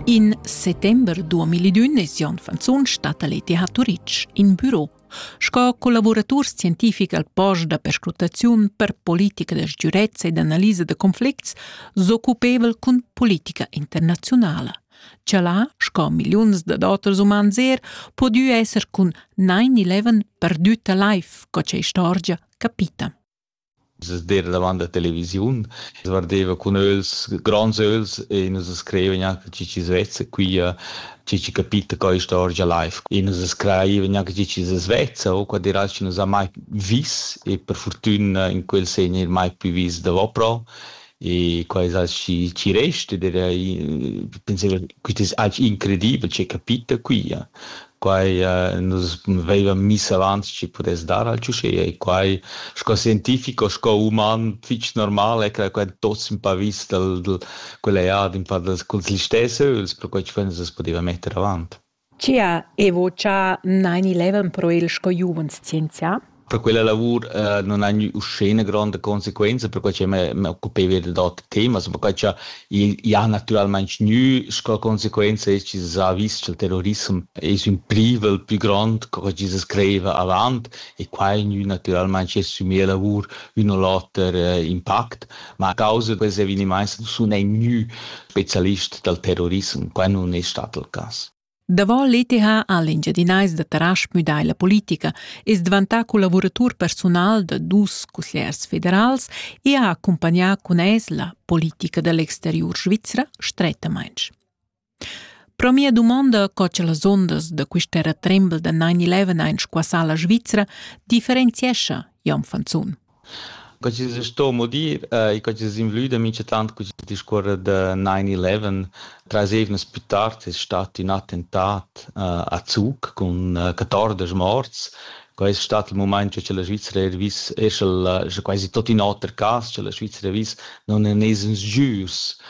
In settember 2001 es Jon Fanzun stat a l'ETH Turitg in büro sco collaboratur scientific al post da perscrutaziun per politica da sgürezza ed analisa da conflicts s'occupevel cun politica internaziunala. Cha là, sco milliuns da doters umans er, podü esser cun 9-11 perdüta life, co cha istorgia capita. sder davant la televisiun, guardeva cun ögls, gronds ögls e nus scrivevan anche chi chi svezza, quia chi chi capita quai istorgia live. E nus scrivevan anche chi chi svezza, o quad eral chi nus ha mai vis e per fortüna in quel segn eir mai plü vis davopro. E quai es aschi chi resta ed era pensavo quist es aschi incredibel che capita quia. Quai nus vaivan miss avant chi pudess dar al ciuchea e quai sco scientifico, sco uman fich normal è che quai tuots ün pa vis dal dal quella ead ün pa dals culs listess ögls, perquai chi fo nus as pudeva metter avant. Chia evo cha n'haini levan però il sco giuvens scienzià. Per quella lavur uh, non hai uschene gronda conseguenza, perquai che m'occupeva da d'autri temi, also perquai che i ha naturalmente gnü sco conseguenza es che s'ha vis che il terrorismo es ün privel più grond co chi se screiva avant e quai gnü naturalmente assumì a lavur ün o l'oter uh, impact. Ma a causa da ses evenimaints sun ei gnü specialist dal terrorissem, quai nun es stat il cas. Davo l'ETH ha l'Engiadinais da Tarasch müdà la politica, es dvantà collavuratur persunal da dus consigliers federals e ha accumpagnà cun es la politica da l'exteriur svizra strettamaing. Pro mia dumonda co cha las ondas da quista terra trembel da 9-11 hain squassà la Svizra differenziescha Jon Fanzun. Co chi sto mo dir e co chi es invlüda minchatant cul discuorrer da 9-11. Trais eivnas plü tard es stat ün attentat a Zug cun 14 morts. Quai es stat il mumaint cha la Svizra eir vis, esch'el scha quasi tot in oter cas, cha la Svizra vis, non en es ins jürs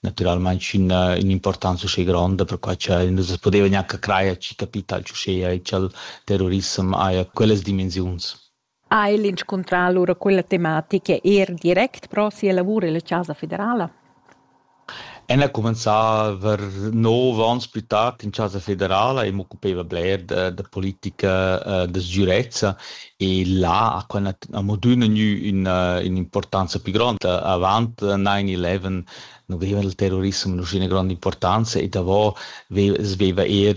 naturalmein sch'ina importanza schi gronda per quai che nus podeva gnanca crajer chi capital chuschea e ch'al terrorissem haja quellas dimensiuns. Ha el inscuntrà allura quella tematica er direct pro sia lavur illa Chasa federala? En ha cumenzà ver nov onns più tard in Chasa federala e m'occupeva bler da, da politica uh, da sgürezza E là ha quella amo d'üna gnü ün'importanza più gronda. Avant 9-11 nu veva il terrorissem üna gronda importanza e davo veva eir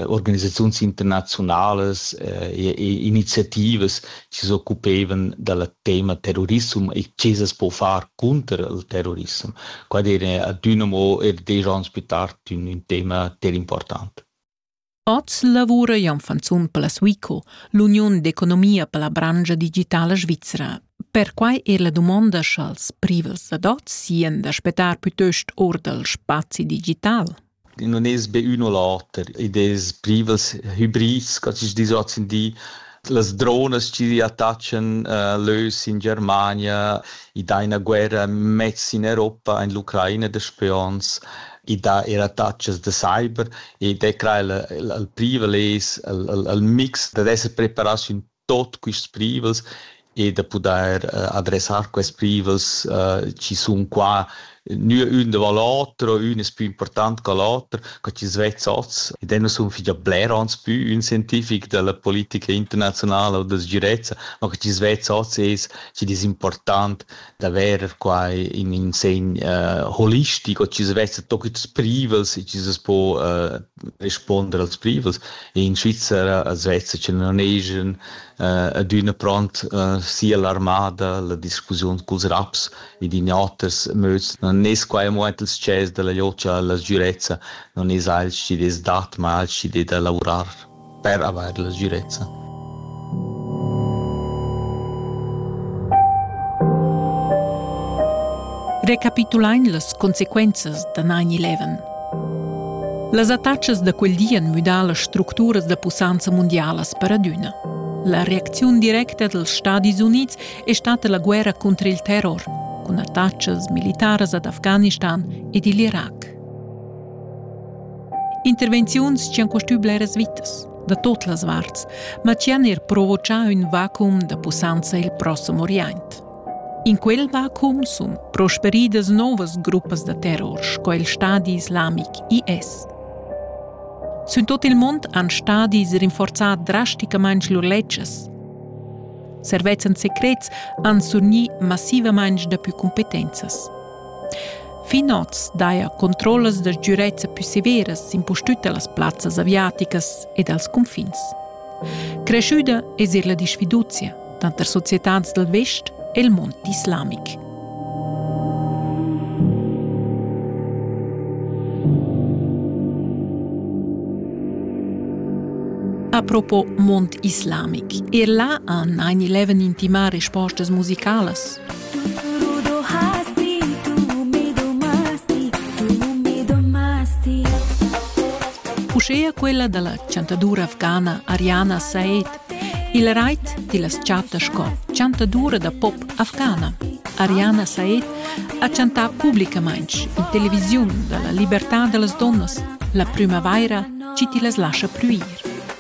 organisaziuns internaziunalas e iniziativas chi s'occupevan dal tema terrorissem e che s'as po far cunter il terrorissem. Quai d'eira adüna amo eir desch ons plü tard ün tema ter important. Oz lavura Janfanzun per la Suico, l'uniun d'economia per la branscha digitala svizra. Perquai è la dumonda sch'als privels ad oz sien da spettar plitost or dal spazi digital. non es be ün o l'oter ed es privels hybrids, ca chi's dis hoz in di, Las dronas chi attachan lö in Germania, i dà üna guerra mez in Europa, in l'Ucraina da spions, i dà eir attachas da cyber ed è crai il privel es il mix dad esser preparats in tuot quists privels e da pudair uh, adressar quest privels uh, chi sun qua nua ün da l'otra, ün es pü important che l'oter, co chi svezza oz. Ed eu sun fich bler ans pü ün scientific della politica internazionala o da sgirezza, ma co chi svezza oz es chi'd es important d'avair qua in in segn uh, holistico, chi svezza tot quels privels e chi se po uh, responder als privels. In Svizzera as vezza che non hegian eh, adüna pront eh, sia l'armada, la discussiun culs raps ed in oters möds. Non es quai amo aint ils chers della liocia alla sgürezza, non es alch chi des dat, ma alch chi de da lavorar. per avair la sgirezza. Recapitulain las consequenzas da 9-11. Las attachas da quel di han müdà las structuras da pussanza mundialas per adüna. La reacziun directa dals Stadis Unids è stata la guerra contro il terror, cun attachas militaras ad Afghanistan ed il Irac. Intervenziuns tgian costü bleras vitas, da tot las varts, ma tgian er provocà ün vacuum da pussanza il prossem Orient. In quel vacuum sun prosperidas novas gruppas da terror sco il stadi islamic IS. Sün tot il mond han stadis rinforzà drasticamaing lur ledsches. Servezzan secrets han surgni massivamaing dapü cumpetenzas. Fin oz daja controllas da sgürezza pü severas impustüt da las plazzas aviaticas e dals cunfins. Creschüda es eir la disfiduzia tanter societats dal vest e il mond islamic. Apropos mond islamic, er là han 9-11 intimà respostas musicalas Uschea quella da la chantadura afghana Ariana Said il rait tillas chatta sco chantadura da pop afghana. Ariana Said ha chantà publicamain in televisiun da la libertà da las donnas. La prümavaira ci ti las lascia prüir.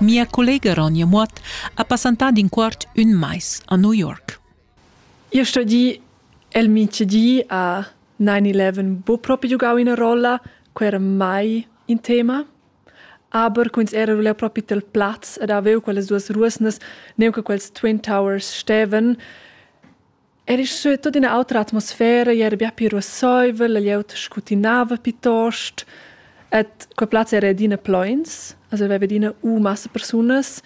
Mia collega Ronja Muot ha passantà d'in quart ün mais a New York. Io sto dir, el micedi a 9-11 bo propi giugau ina rolla, quei era mai in tema. Aber quins era leu propi tel plaz ed avevo quellas duas ruosnas, neu che quels Twin Towers steven, Era sche tut ina autra atmosfera era bia pli ruasseivel e glieud scutinava piuttost. Ed quei plaz era adina pleins, also aveva adina u massa persunas.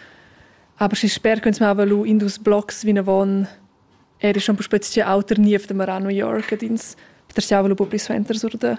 Aber schi sper che ins mava lu in dus blocs vinavon, era schon puspei tgei auter niev demorà a New York ed ins petersiava lu buca pli suenter sur da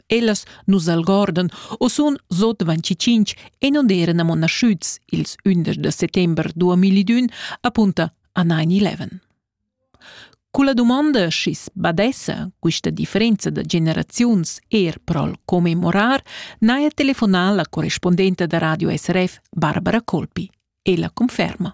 Ellas nus algordan u sun sot 25 e non eran amo naschüts ils 11 de settember 2001 apunta a 9-11. Culla domanda schi's badessa quista differenza da generaziuns er pro'l commemorar, n'haja telefonà la correspondenta da Radio SRF Barbara Colpi e la conferma.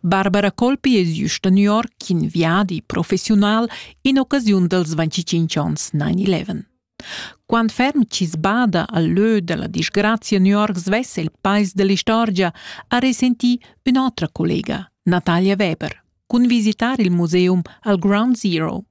Barbara Colpi es jüsta a New York in viadi professiunal in occasiun dals 25 ans 9-11. Quant ferm chi's bada al lö da la disgrazia a New York svessa il pais da l'istorgia ha resentì ün'otra collega, Natalia Weber, cun visitar il museum al Ground Zero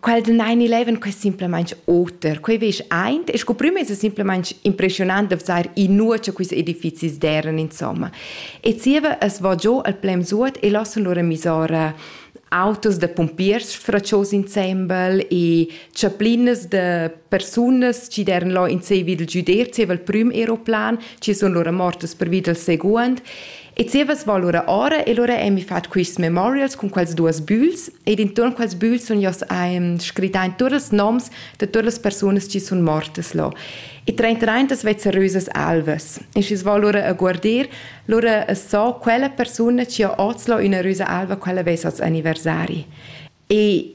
quel den 9-11 quei simplamain oter quei veš eint e sco prima es simplamain impressionant da vzar i nur cha quis edifizis deran insomma e zieva es vo giò al plem suot e lassen lura misora autos da pompiers fraccios insembel e chaplinas da persunas chi deran là in sei vid il giuder zieva il prüm aeroplan chi sun lura mortas pervi dal seguond E zievas val ora ora e lura emi fat quists memorials cun quels duos bügls ed intuorn quels bügls sun io's ehm, scrittà in tuot ils noms da tuot las persunas chi sun mortas là. E traintraintas vez serösas alvas. E schi's val lura a guardir, lura as so quella persuna chi ha hoz là üna rösa alva, quella vess hoz anniversari. E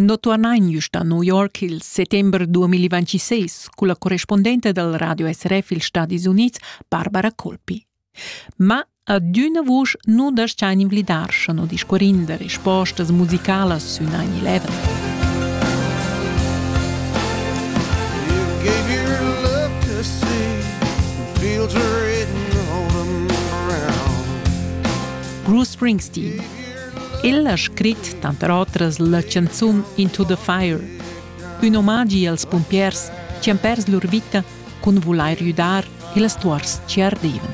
No turnain güst a New York il settember 2026 culla correspondente dal Radio SRF ils Stadis Units, Barbara Colpi. Ma adüna vusch nu das-chain invlidar, scha no discuorin da respostas musicalas sün 9-11. Bruce Springsteen El ha scrit tanter otras la chanzun Into the Fire, ün omagi als pumpiers chi han pers lur vita cun vulair güdar ils tuors chi ardevan,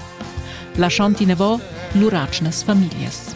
lasciand inavò lur atgnas famiglias.